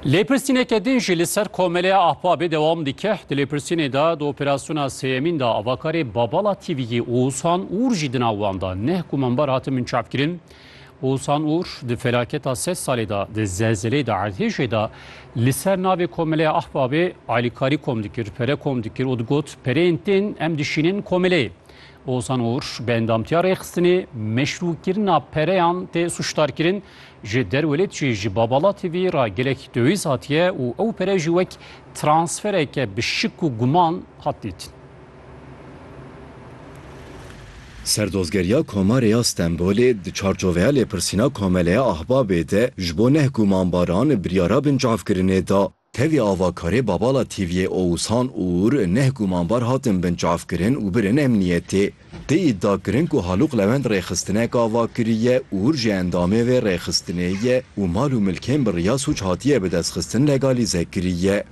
Lêpirsîneke din jî li ser Komeleya Ahbabê dewam dike. Di lêpirsînê de di operasyona sêyemîn de avakarê Babala TV'yê Oğuzhan Uğur jî di nav wan de neh gumanbar hatin binçavkirin. Oğuzhan Uğur di felaketa sed salê de di zelzeleyê de erdhêjê de li ser navê Komeleya Ahbabê alîkarî kom dikir, pere kom dikir û digot pereyên tên em dişînin komeleyê. Ozan Uğur bi endamtiya rêxistinê meşrûkirina pereyan tê sûcdarkirin. Ji derwelêt jî ji Babala TV re gelek döwîz hatiye û ew pere jî wek transfereke bi şik û guman hat dîtin. Serdozgeriya Komarê ya Stenbolê di çarçoveya lêpirsîna Komeleya Ahbabê de ji bo neh gumanbaran biryara binçavkirinê da. Tevî avakarê Babala Tîviyê Oushan Uur neh gumanbar hatin binçavkirin û birin emniyetê. Tê îddia kirin ku Halûq Lewend rêxistinek ava kiriye, Uur jî endamê vê rêxistinê ye û mal û milkên bi riya sûc hatiye bidestxistin legalîze kiriye.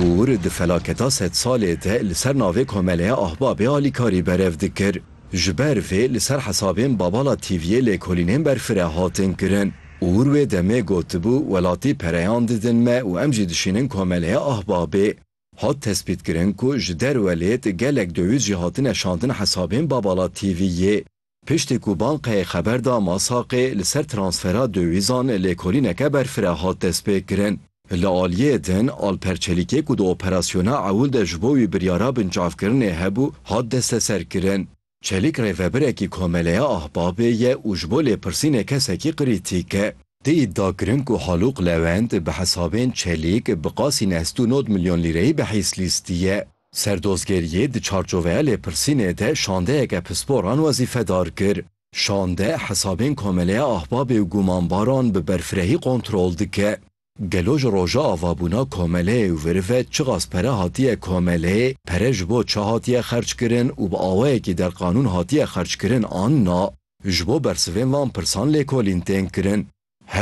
Uur di felaketa sedsalê de li ser navê Komeleya Ahbabê alîkarî berev dikir. Ji ber vê li ser hesabên Babala TV'ê lêkolînên berfireh hatin kirin û wir wê demê gotibû welatî pereyan didin me û em jî dişînin komeleya Ahbabê. Hat tespîtkirin ku ji derwe lêt gelek döwît jî hatine şandin hesabên Babala TV'ê. Piştî ku bankayê xeber da Masaqê li ser transfera döwîzan lêkolîneke berfireh hat destpêkirin. Li aliyê din, Alper Çelîkê ku di operasyona ewil de ji bo wî biryara binçavkirinê hebû, hat desteserkirin. Çelîk rêvebirekî Komeleya Ahbabê ye û ji bo lêpirsînê kesekî krîtîk e. Tê îdiakirin ku Halûq Lewend bi hesabên Çelîk bi qasî neh sed û nod milyon lîreyî bi hîs lîstiye. Serdozgeriyê di çarçoveya lêpirsînê de şandeyeke pisporan wezîfedar kir. Şande hesabên Komeleya Ahbabê û Gumanbaran bi berfirehî kontrol dike. Gelo ji roja avabûna komeleyê û viri ve çiqas pere hatiye komeleyê, pere ji bo çi hatiye xerckirin û bi awayekî derqanûn hatiye xerckirin an na? Ji bo bersivên van pirsan lêkolîn tên kirin.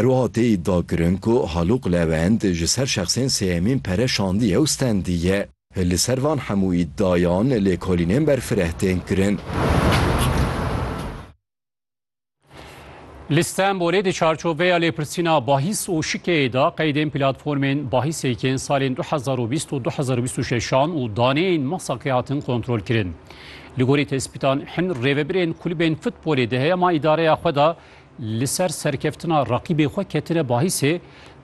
Herwiha tê îdiakirin ku Halûq Lewend ji ser şexsên sêyemîn pere şandiye û stendiye. Li ser van hemû îdiayan lêkolînên berfireh tên kirin. Li Stenbolê di çarçoveya lêpirsîna bahis û şikeyê de qeydên platformên bahîsê yên salên du hezar û bîst û du hezar û bîst û şeş an û daneyên Masakê hatin kontrolkirin. Li gorî tespîtan hin rêvebirên kulîbên futbolê di heyama îdareya xwe de li ser serkeftina reqîbê xwe ketine bahîsê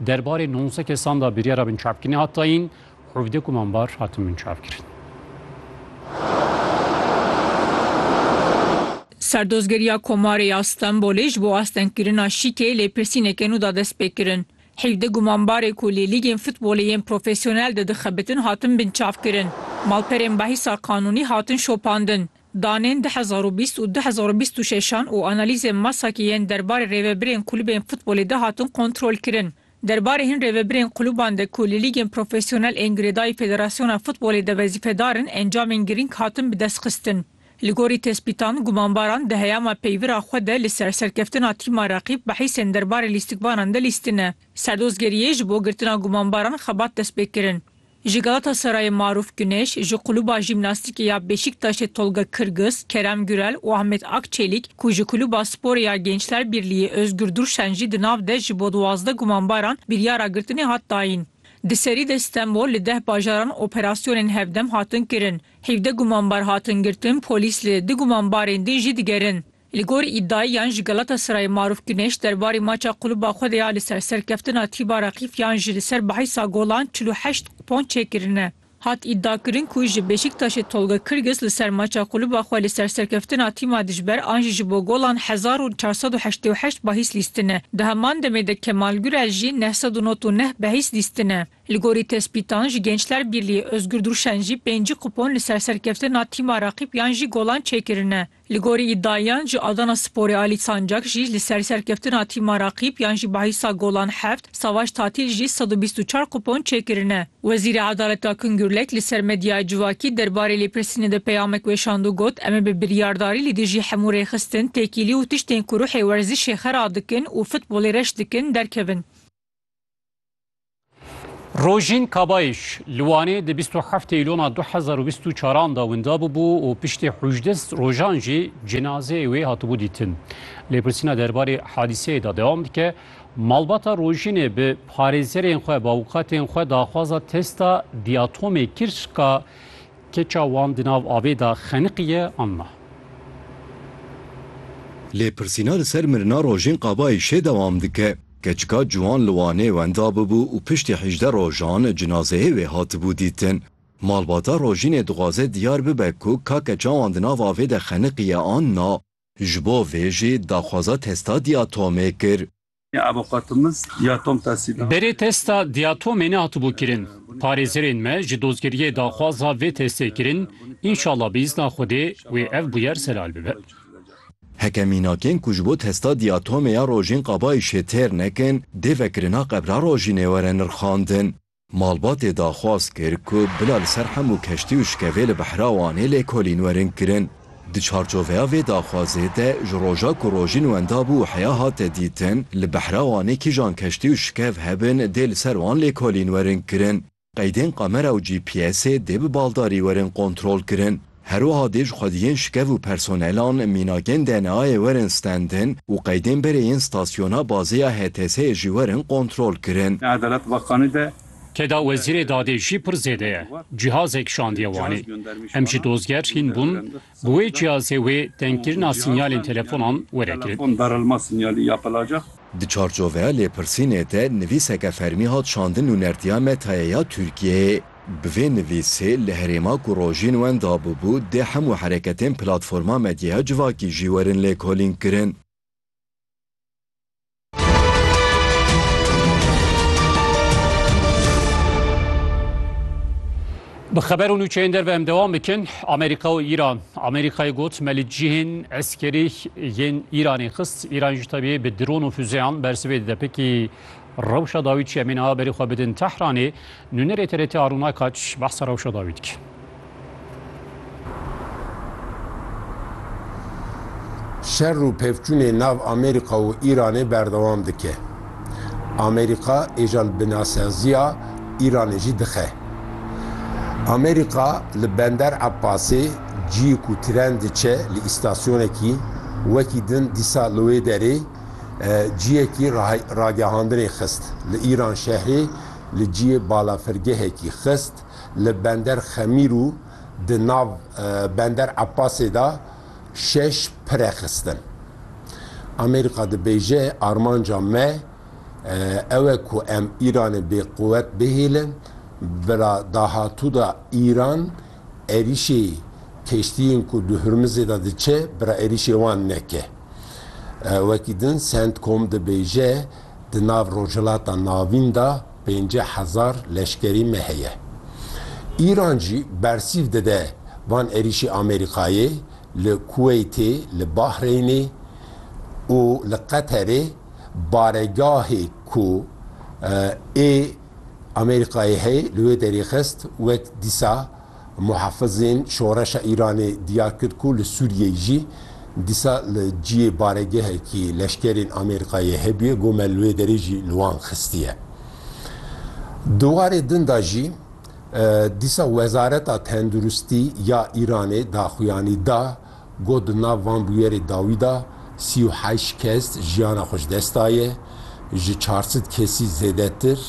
derbarê nonze kesan de biryara binçavkirinê hat dayîn, hevdeh kumanbar hatin binçavkirin. Serdozgeriya Komarê ya Stenbolê ji bo astengkirina şîkê lêpirsîneke nû da destpêkirin. Hevdeh gumanbarê ku li lîgên futbolê yên profesyonel de dixebitin hatin binçavkirin. Malperên behîsa qanûnî hatin şopandin. Danên du hezar û bîst û du hezar û bîst û şeşan û analîzên Masaki yên derbarê rêvebirên kulubên futbolê de hatin kontrolkirin. Derbarê hin rêvebirên kuluban de ku li lîgên profesyonel ên girêdayî Federasyona Futbolê de wezîfedar in encamên girîng hatin bidestxistin. Li gorî tespîtan, gumanbaran di heyama peyvira xwe de li ser serkeftina tîma reqîb behîsên derbarê lîstikvanan de lîstine. Serdozgeriyê ji bo girtina gumanbaran xebat destpêkirin. Ji Galatasarayê Maruf Guneş, ji Kulûba Jîmnastîkê ya Beşîktaşê Tolga Kırgız, Kerem Gürel û Ahmet Akçelik ku ji Kulûba Sporê ya Gençler Birlîyê Özgür Durşen jî di nav de ji bo duwazdeh gumanbaran biryara girtinê hat dayîn. Di serî de Stenbol li deh bajaran operasyonên hevdem hatin kirin. Hîvdeh gumanbar hatin girtin, polîs li du gumanbarên din jî digerin. Li gor îdiayan ji Galatasarayê Maruf Guneş derbarê maça quluba xwe de ya li ser serkeftina tîpa Reqîf yan ji li ser behisa golan çil û heşt kupon çêkirine. Hat îdiakirin ku ji Beşîktaşê Tolga Kirgis li ser maça quluba xwe li ser serkeftina tîma dijber an jî ji bo golan hezar û çar sed û heştê û heşt bahîs lîstine. Di heman demê de Kemal Gurel jî neh sed û not û neh behîs lîstine. Li gorî tespîtan ji Gençler Birlîyê Ozgur Durşen jî pêncî kupon li ser serkeftina tîma Reqîp yan jî golan çêkirine. Li gorî îdiayan ji Adana Sporê Alî Sancak jî li ser serkeftina tîma Raqîb yan jî bahîsa golan heft, Savaş Tatîl jî sed û bîst û çar kupon çêkirine. Wezîrê Edaletê Akın Gürlek li ser medyaya civakî derbarê lêpirsînê de peyamek weşand û got, Em ê bi biryardarî li dijî hemû rêxistin, têkîlî û tiştên ku ruhê werzişê xera dikin û futbolê reş dikin, derkevin. Rojîn Kabayîş li Wanê di bîst û heft Eylûna du hezar û bîst û çaran da winda bûbû û piştî hûjdeh rojan jî cinazeyê wê hatibû dîtin. Lêpirsîna derbarê hadîseyê da dewam dike. Malbata Rojînê bi parêzerên xwe bi avûkatên xwe daxwaza testa dîatomê kir ka keça wan di nav avê da xeniqiye an na. Lêpirsîna li ser mirina Rojîn Kabayîşê dewam dike. Keçika ciwan li Wanê wenda bûbû û piştî hîjdeh rojan cinazeyê wê hatibû dîtin. Malbata Rojînê dixwaze diyar bibe ku kake çawan di nav avê de xeniqiye an na. Ji bo vê jî daxwaza testa diatomê kir. Avûkatimiz ya Tom Tasîna. Berê testa diatomê nehatibû kirin. Parêzerên me ji dozgeriyê daxwaza vê testê kirin, înşallah bi îzna Xwedê wê ev bûyer zelal bibe. Heke mînakên ku ji bo testa diatomê ya rojên qabayîşê têr nekin, dê vekirina qebra rojînê were nirxandin. Malbatê daxwaz kir ku bila li ser hemû keştî û şikevê li behra Wanê lêkolîn werin kirin. Di çarçoveya vê daxwazê de ji roja ku rojîn wenda bû heya hate dîtin, li behra Wanê kîjan keştî û şikev hebin dê li ser wan lêkolîn werin kirin. Qeydên kamera û GPSê dê bi baldarî werin kontrolkirin. Her wiha dê ji xwediyên şikev û personelan mînakên DNA'yê werin stendin û qeydên berê yên stasyona bazê ya HTS'ê jî werin kontrolkirin. Li Edalet Bakanî de Têda Wezîrê Dadê jî pir zêde ye. Cîhazek şandiye Wanê. Em ji dozger hîn bûn, Bi wê cihazê wê tengkirina sînyalên telefonan were kirin. Di çarçoveya lêpirsînê de nivîseke fermî hat şandin nûnertiya Meta'yê ya Tirkiyeyê. Bi vê nivîsê li herêma ku rojîn wenda bûbû dê hemû hereketên platforma medyaya civakî jî werin lêkolînkirin. Bi xeber û nûçeyên derve em dewam bikin. Amerîka û Îran. Amerîkayê got me li cihên eskerî yên Îranê xist. Îran ji tevî bi dron û füzeyan bersivê dide. Pekî rewşa dawî çi em ê niha berê xwe bidin Tehranê. Nûnerê TRT Arun Aykaç behsa rewşa dawî dike. Şer û pevçûnê nav Amerîka û Îranê berdewam dike. Amerîka êjan binasaziya Îranê jî dixe. Amerîka li Bender Ebbasê ciyê ku tren diçe li îstasyonekî wekî din dîsa li wê derê ciyekî ragehandinê xist. Li Îran şehrê li ciyê balafirgehekî xist li bender Xemîr û di nav bender Eppasê de şeş pire xistin. Amerîka dibêje armanca me ew e ku em Îranê bêquwet bihêlin, bila dahatû de Îran êrîşê keştiyên ku di Hurmizê de diçe bila êrîşê wan neke. Wekî din Centcom dibêje, Di nav Rojhilata Navîn de pêncî hezar leşkerî me heye. Îran jî bersîv dide van êrîşî Amerîkayê li Kuweytê, li Bahreynê û li Qeterê baregahê ku ê Amerîkayê heye li wê derî xist wek dîsa Muhafizên Şoreşa Îranê diyar kir ku li Sûriyeyê jî dîsa li ciyê baregehekî leşkerên Amêrikayê hebûye, gome li wê derê jî li wan xistiye. Di warê din de jî dîsa Wezareta Tenduristî ya Îranê daxuyanî da Got di nav van bûyerê dawî de sî û heşt kes jiyana xwe ji dest daye, ji çar sed kesî zêdetir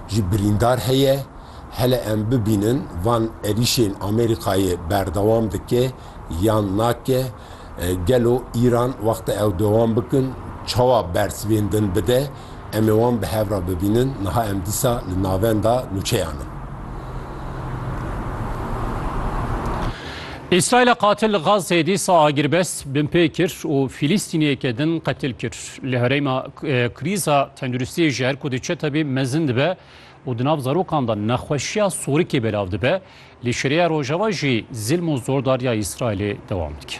jî birîndar heye. Hele em bibînin van erîşên Amerîkayê berdewam dike yan nake? Gelo Îran wexta ew dewam bikin çawa bersiv ên din bide? Em ê wan bi hev re bibînin. Niha em dîsa li navenda nûçeyan in. Îsraîla qatil li Gazeyê dîsa agirbest binpê kir û Fîlîstîniyeke din qetil kir. Li herêma krîza tenduristiyê ji her ku diçe tevî mezin dibe û di nav zarokan de nexweşiya sorikê belav dibe. Li Şûriya Rojava jî zilm û zordariya Îsraîlê dewam dike.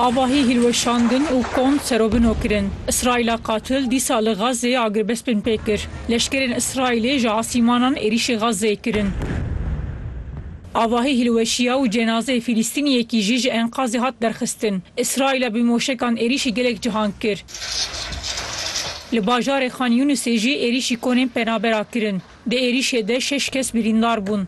Avahî hîlweşandin û kom serobino kirin. Îsraîla qatil dîsa li Xazzeyê agiribest bin pê kir. Leşkerên Îsraîlê ji asîmanan êrîşî Xazzeyê kirin. Avahî hîlweşiya û cenazeyê Fîlîstîniyekî jî ji enkazê hat derxistin. Îsraîla bi moşekan êrîşî gelek cihang kir. Li bajarê Xan Yûnisê jî êrîşî konên penabera kirin. Di êrîşê de şeş kes birîndar bûn.